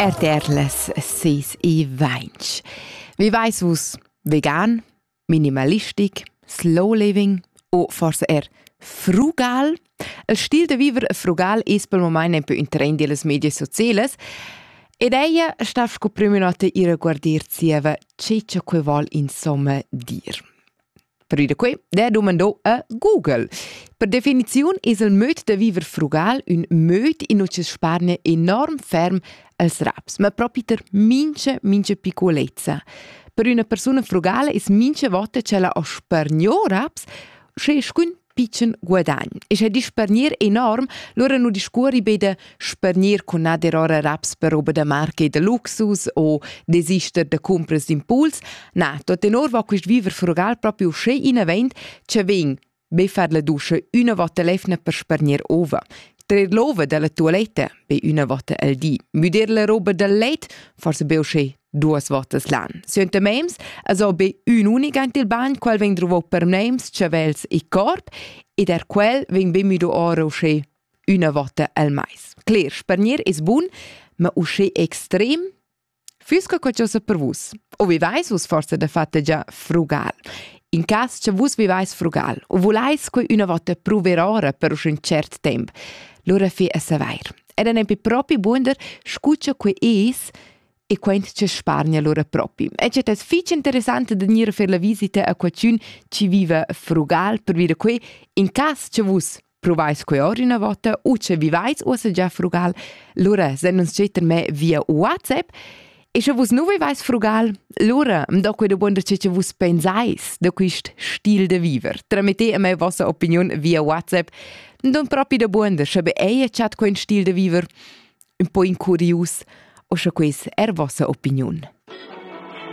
RTR les sis e vainch. Wie weiß vus, vegan, minimalistic, slow living o forse er frugal? Il stil da viver frugal es pel momaint un peu ün trend illas medias socielas ed eia sta sco prüma nota ir a guardir zieva che cha quai voul insomma dir. Prü da que d'he dumando a Google. Per definiziun es il möd da viver frugal ün möd in ucha spargna enorm ferm als raps, ma propi ter mincha, mincha piccolezza. Per üna persuna frugala es mincha vota ch'ella ho spargno raps, sche scun pitschen guadagn. E sche dispargnir enorm, lura nu discuori be da spargnir cun nader ora raps per roba da marca da luxus o desister da cumpras d'impuls. Na, tot tenor va quist viver frugal proprio sche inavent, che vegn be far la duscha üna vota lefna per spargnir ova trer l'ova dalla tualetta be üna vota al di, müder la roba dal let, forse be usché Duas votas l'an. Suenter mems es o be ün'unica ant il bagn, quel vegn druvò per mems, chavels e corp, ed er quel vegn be müdo ora uschè üna vota al mais. Cler, spargnir es bun, ma uschè extrem füss que qualchosa per vus. O vivais vus forse da fatte già frugal? In cas che vus vivais frugal u vulais que una volta prover ora per un cert temp, lura fi a savair. Ed è nempi propi bunder, scuccia que es, e quent che spargna lura propi. E cert es fich interessant da gnir a fer la visita a qualchün chi viva a Frugal per dire que, in cas che vus provais que or üna vota u che vivais uossa già a Frugal, lura sen uns getter me via WhatsApp E sche vus nu vivais frugal, lura am do que dumonda che che vus pensais da quist stil de viver. Tramite a me vossa opiniun via WhatsApp, nun propi da buonder, sche be ei chat quel stil de viver. ün po incurius, o scha quais eir vossa opiniun.